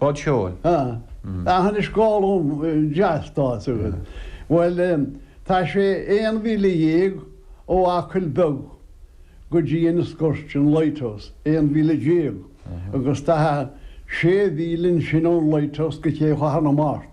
Bád seoil? Ahh. Ahh anois dhá long deas tá a fhios agat. Bhuel tá sé aon mhíle dhéag ó Acaill Beag go dtí Inis Goirt an Lighthouse, aon mhíle déag, agus tá sé mhíle ansin ón Lighthouse go Cé Chathair na Mart.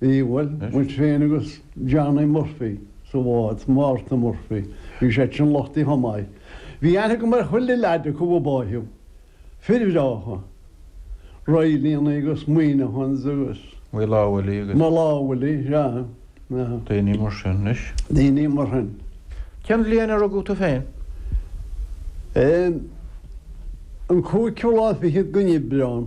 Bhí, bhuel, muid féin agus Johnny Murphy sa bhád, Mártan Murphy, bhí seisean luchtaithe chomh maith. Bhí aithne agam ar chuile leaid acu a báitheadh. Fir bhreátha. Raghallaigh agus Monaghans agus. Mulawali agus. Mulawali, sea, yeah. Daoine mar sin anois. Daoine mar shin. Cén bhliain a rugadh tú féin? Em. an cúigiú lá fichead den Aibreán.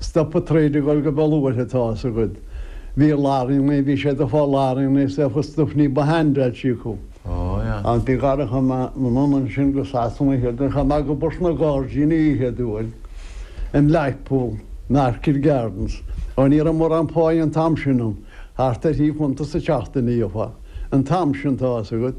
Stop a troid ag dul go beo luaithe tá a fhios agat. Bhí a lár in aon bhí sé do phá lár in aon saofa stop ní ba shean bead sí acu. Ach ní gá chuaigh mé anonn ansin go Sasana oíche chuaigh mé ag obair sna gairdíní oíche dual in Blackpool na Orchid Gardens ó ní raibh mórán páighe an t-am sin ann thart ar thrí phunt sa tseachtain a gheofá an t-am sin tá a fhios agat.